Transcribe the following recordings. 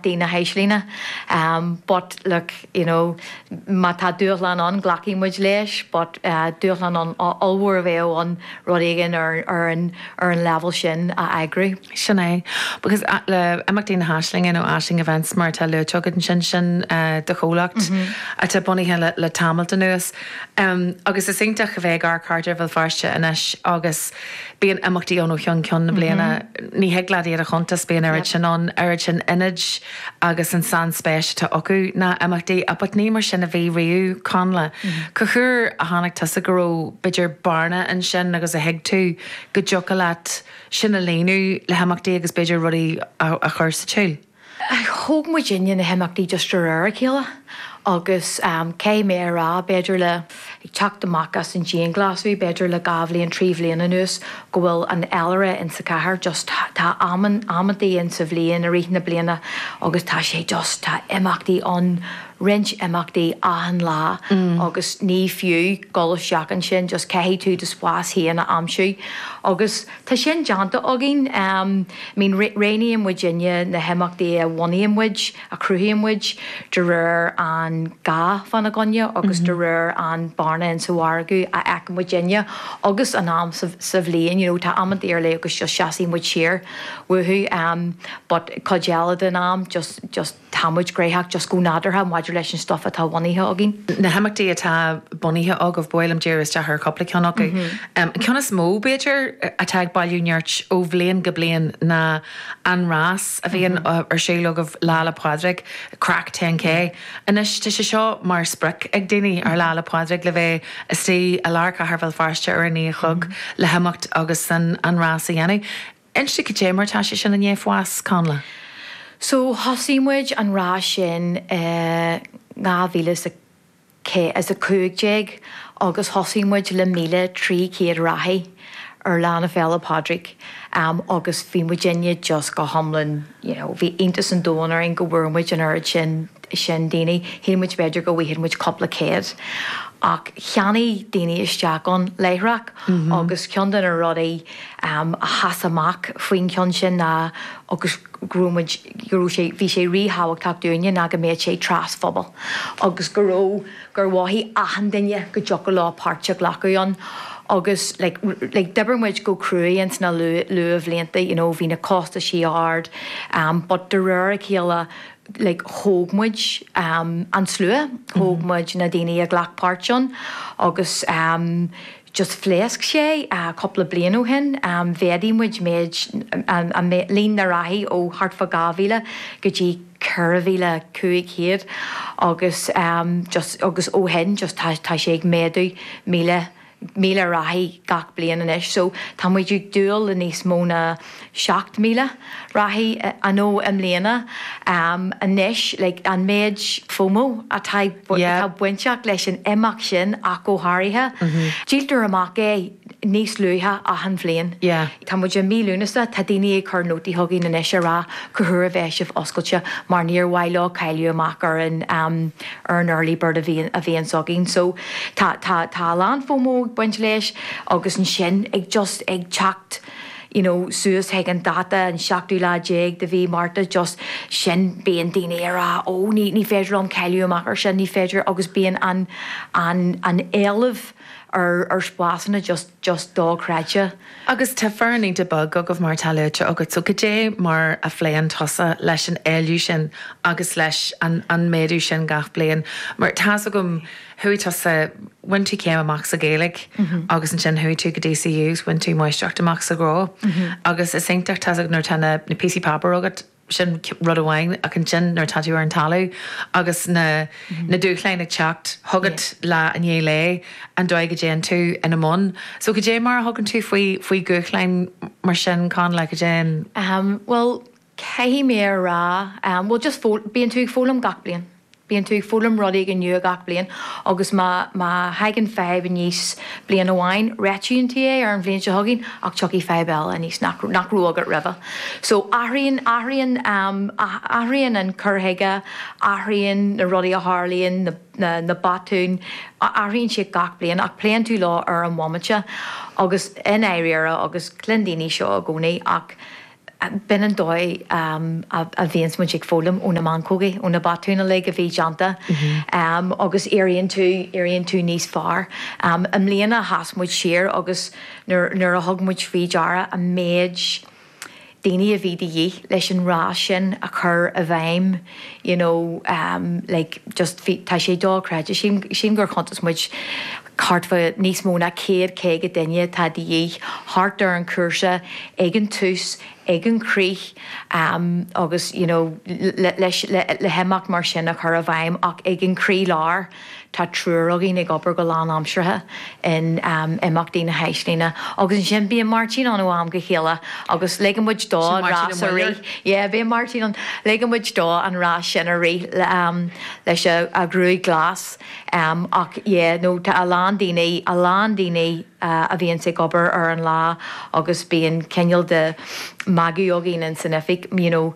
dtí na hAislinge but look you know má tá dúshlán ann glacfaidh muid leis but dúshlán ollmhór a bheadh ann rud éigin ar an ar an level sin a eagrú. Sin é. Because le imeachtaí na hAislinge nó Aisling Events mar atá luaite agat ansin sin do chomhlacht atá bunaithe le tamall anuas. Agus is iontach a bheith ag amharc thart ar Bhéal Feirste anois agus, Bíonn imeachtaí ann ó cheann ceann na bliana. Ní thig leat iad a chuntas, bíonn oiread sin ann, oiread sin ionaid agus an sainspéis atá acu ná imeachtaí. But ní mar sin a bhí riamh, Connla. Cá huair a tháinig tusa go dtí go raibh b'fhéidir bearna ansin agus a thuig tú go dtiocfadh leat sin a líonadh le himeachtaí agus b'fhéidir rudaí a chur sa tsiúl? Thóg muidinne na himeachtaí just de réir a chéile agus caithfidh mé a rá, b'fhéidir le, ag teacht amach as an dianghlasú, b'fhéidir le dhá bhliain, trí bhliain anuas go bhfuil an féilire in sa chathair just, tá amantaí in sa bhliain, i rith na bliana agus tá sé just, tá imeachtaí ann, roinnt imeachtaí achan lá agus ní fiú dul isteach ansin, just caithfidh tú do spás féin a aimsiú agus. Tá sin déanta againn. I mean dhéanfaidh muidinne na himeachtaí a bhunaíonn muid, a chruthaíonn muid, de réir an gá fána gcoinne agus de réir an bearna in sa mhargadh a fheiceann muidinne agus an am sa bhliain. You know, tá amanta ar leith agus just seasfaidh muid siar. You know. But cuid eile den am just, just. Tá muid gnaitheach just go nádúrtha maidir leis an stuif atá bunaithe againn. Na himeachtaí atá bunaithe agaibh, bhuel, ag díriú isteach ar chúpla ceann acu. An ceann is mó, b'fhéidir, atá ag bailiú nirt ó bhliain go bliain ná an rás a bhíonn ar siúl agaibh Lá 'le Pádraig, Craic 10K. Anois, tá sé seo mar sprioc ag daoine ar Lá 'le Pádraig le bheith istigh i lár chathair Bhéal Feirste ar a naoi a chlog le himeacht agus an rás a dhéanamh. Inis dom cad é mar tá sé sin i ndiaidh fás, Connla? So thosaigh muid an rás sin i ndhá mhíle is a cé, is a cúig déag agus thosaigh muid le míle trí chéad reathaí ar lá na Féile Pádraig agus bhí muidinne just go hiomlán, you know bhí iontas an domhain orainn go bhfuair muid an oiread sin sin daoine. Shíl muid b'fhéidir go bhfaigheadh muid cúpla céad ach cheannaigh daoine isteach ann láithreach agus ceann de na rudaí ehm a sheas amach faoin cheann sin ná agus go raibh muid go raibh sé bhí sé ríthábhachtach dúinne ná go mbeadh sé trasphobail agus go raibh gur mhothaigh achan duine go dtiocfadh leo páirt a ghlacadh ann agus like d'oibir muid go cruaidh ins na luathbhlianta you know bhí na costaisí ard em but de réir a chéile like thóg muid em an slua thóg muid na daoine a ghlac páirt ann agus em just phléasc sé cúpla bliain ó shin. Mhéadaigh muid méid, an, líon na reathaí ó thart fá 2,000 go dtí 4,500 agus just, agus ó shin just tá, tá sé ag méadú 1,000, 1,000 reathaí gach bliain anois. So tá muid ag dúil le níos mó ná. 7,000 reathaí, you know, i mbliana anois le an méid Fomo atá atá bainteach leis an imeacht sin ach go háirithe. Díoltar amach é níos luaithe achan bhliain. Tá muid i mí Lúnasa, tá daoine ag cur nótaí chugainn anois a rá cá huair a bheidh sibh oscailte mar níor mhaith leo cailleadh amach ar an ar an early bird a bhíonn a bhíonns againn. So tá tá tá a lán Fomo ag baint leis agus ansin ag just ag teacht you know suas chuig an dáta an seachtú lá déag de mhí Márta just sin bíonn daoine a rá ó ní ní féidir liom cailleadh amach ar sin ní féidir agus bíonn an an an éileamh ar ar spásanna just just dochreidte. Agus tá foireann iontach beag agaibh mar atá luaite agat so goidé mar a phléann tusa leis an éileamh sin agus leis an an méadú sin gach bliain mar tá's agam chuaigh tusa, bhain tú céim amach sa Ghaeilge agus ansin chuaigh tú go DCU agus bhain tú máistreacht amach sa ghnó agus is iontach, tá's agat, nuair atá na píosaí páipéar agat, sin rud amháin ach ansin nuair atá tú ar an talamh agus na, na dúshláin ag teacht chugat lá i ndiaidh lae, an dóigh a dtéann tú ina mbun. So goidé mar a thugann tú faoi, faoi dhúshláin mar sin, Connla, goidé an. Ahem, bhuel, Caithfidh mé a rá, bhuel just foghlaim, bíonn tú ag foghlaim gach bliain, bíonn tú ag foghlaim rud éigin nua gach bliain agus má, má thagann fadhb aníos bliain amháin, réitíonn tú é ar an bhliain seo chugainn ach tiocfaidh fadhb eile aníos nach, nach raibh agat roimhe. So athraíonn, athraíonn, athraíonn an cur chuige, athraíonn na rudaí a tharlaíonn, na, na, na botúin, athraíonn siad gach bliain ach pléann tú leo ar an bhomaite agus i ndáiríre agus cluin daoine seo i gcónaí ach B'in an dóigh a bhíonns muid ag foghlaim ó na meancógaí, ó na botúin uilig a bhí déanta agus éiríonn tú, éiríonn tú níos fearr. I mbliana sheas muid siar agus nuair a thug muid faoi deara an méid daoine a bhí de dhíth leis an rás sin a chur i bhfeidhm, you know, like just bhí, tá sé dochreidte, sílim, sílim gur chuntas muid, Thart fá níos mó ná céad caoga duine atá de dhíth thart ar an chúrsa ag an tús, ag an gcrích agus you know le himeacht mar sin a chur i bhfeidhm ach ag an gcroílár tá triúr againn ag obair go lánaimseartha in Imeachtaí na hAislinge agus ansin bíonn Máirtín ann ó am go chéile agus ligeann muid dó an rás a rith, yeah bíonn Máirtín ann, ligeann muid dó an rás sin a rith leis an ghruaig ghlas. Em, ach, yeah, no, tá a lán daoine, a lán daoine a bhíonns ag obair ar an lá agus bíonn cineál de mhagadh againn ins an oifig, you know,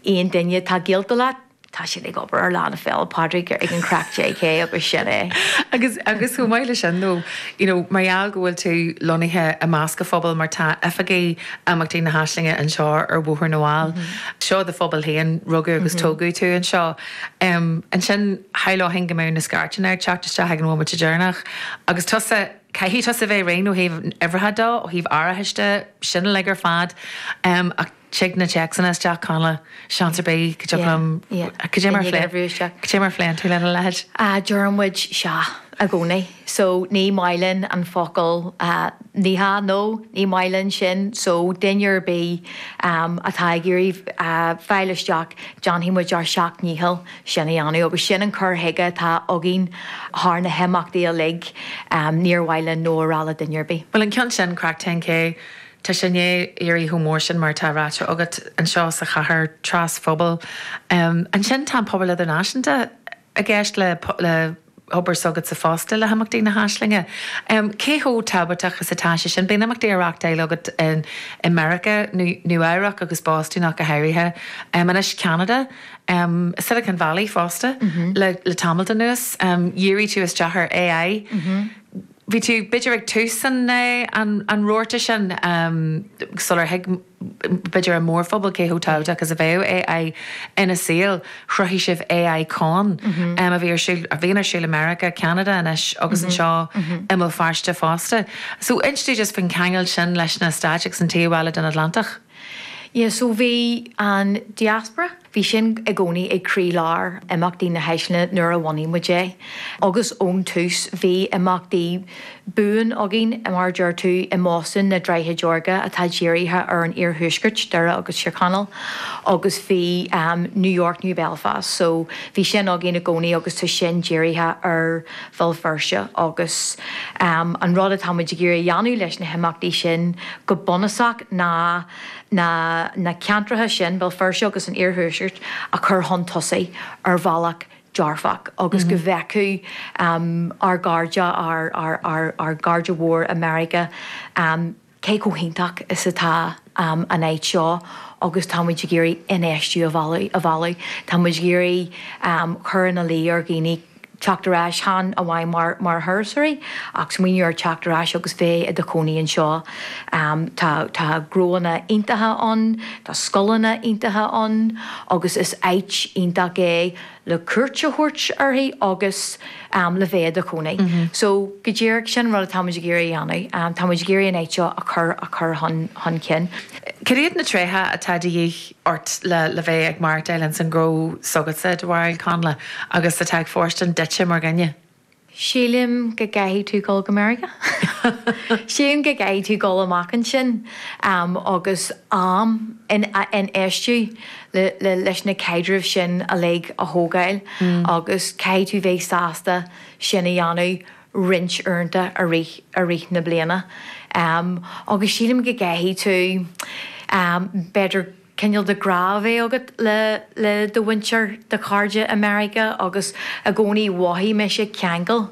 aon duine atá gaolta leat, tá siad ag obair ar Lá na Féile Pádraig ag an Craic 10K agus sin é. Agus, agus chomh maith le sin nó, you know, mar gheall go bhfuil tú lonnaithe i measc an phobail mar tá oifigí Imeachtaí na hAislinge anseo ar Bhóthar na bhFál, seo do phobal féin, rugadh agus tógadh tú anseo. Em, ansin shamhlóinn go mbeadh na scairteanna ag teacht isteach ag an bhomaite deireanach. Agus tusa, caithfidh tusa bheith réidh ó thaobh uimhreacha de, ó thaobh árachais de, sin uilig ar fad. Em, ach tig na téacsanna isteach, Connla, seans ar bith go dtiocfadh liom, yeah, cad é mar a phlé, cad é mar a phléann tú lena leithéid? Ah, deireann muid, sea, i gcónaí. so ní maith linn an focal ní hea no ní maith linn sin so duine ar bith atá ag iarraidh fáil isteach déanfaidh muid ár seacht ndícheall sin a dhéanamh agus sin an cur chuige atá againn thar na himeachtaí uilig níor mhaith linn no a rá le duine ar bith. Bhuel an ceann sin, craic 10K, tá sé i ndiaidh éirí chomh mór sin mar atá ráite agat anseo sa chathair trasphobail. Ansin tá an pobal idirnáisiúnta i gceist le hobair s'agatsa fosta le hImeachtaí na hAislinge. Cé chomh tábhachtach is atá sé sin? Bíonn imeachtaí á reáchtáil agat i Meiriceá, Nua Eabhrac agus Bostún ach go háirithe, anois Ceanada, Silicon Valley fosta le tamalt anuas. Dhírigh tú isteach ar AI. bhí tú b'fhéidir ag tús an rabharta sin sular thuig b'fhéidir an mórphobal cé chomh tábhachtach is a bheadh AI ina saol, chruthaigh sibh AI Con a bhí ar siúl, a bhíonn ar siúl i Meiriceá, Ceanada anois agus anseo i mBéal Feirste fosta. So inis dúinn just faoin cheangal sin leis na Stáit agus an taobh eile den Atlantach. Yeah, so bhí an diaspora. Bhí sin i gcónaí ag croí lár Imeachtaí na hAislinge nuair a bhunaigh muid é agus ón tús bhí imeachtaí buan againn mar a deir tú i mBostún, na Droichid Órga atá dírithe ar an iarthuaisceart, Doire agus Tír Chonaill, agus bhí New York, New Belfast so bhí sin againn i gcónaí agus tá sin dírithe ar Bhéal Feirste agus an rud atá muid ag iarraidh a dhéanamh leis na himeachtaí sin go bunúsach ná na na ceantracha sin, Béal Feirste agus an Iarthuaisceart, a chur chun tosaigh ar bhealach dearfach agus go bhfeicfeadh ár gcairde, ár gcairde mhór i Meiriceá cé chomh hiontach is atá an áit seo agus tá muid ag iarraidh infheistiú a mhealladh. Tá muid ag iarraidh cur ina luí ar dhaoine. teacht ar ais chan amháin mar thurasóirí ach smaoineamh ar theacht ar ais agus bheith i do chónaí anseo. Tá gnóanna iontacha ann, tá scoileanna iontacha ann agus is áit iontach é le cuairt a thabhairt uirthi agus le bheith i do chónaí. So go díreach sin an rud atáimid ag iarraidh a dhéanamh. Táimid ag iarraidh an áit seo a chur chun cinn. Cad iad na tréithe atá de dhíth ort le bheith ag mairstean ins an ghnó s'agatsa, dar leat, a Chonnla, agus atá ag fóirstean duitse mar dhuine. Sílim go gcaithfidh tú dul go Meiriceá. Sílim go gcaithfidh tú dul amach ansin agus am a infheistiú leis na caidrimh sin uilig a thógáil agus caithfidh tú bheith sásta sin a dhéanamh. roinnt uaireanta i rith i rith na bliana agus sílim go gcaithfidh tú b'fhéidir cineál de ghrá a bheith agat le le do mhuintir do chairde i Meiriceá agus i gcónaí mhothaigh mise ceangal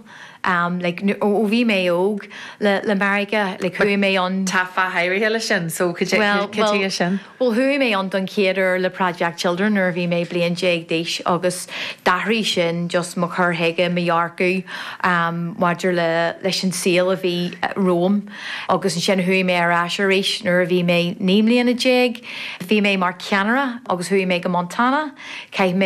like nó ó bhí mé óg le le Meiriceá like chuaigh mé ann tá fáth áirithe leis sin so cad é cad é sin? Bhuel, chuaigh mé ann don chéad uair le Project Children nuair a bhí mé bliain déag d'aois agus d'athraigh sin just mo chur chuige, mo dhearcadh maidir le leis an saol a bhí romham agus ansin chuaigh mé ar ais arís nuair a bhí mé naoi mbliana déag. Bhí mé mar cheannaire agus chuaigh mé go Montana, chaith mé.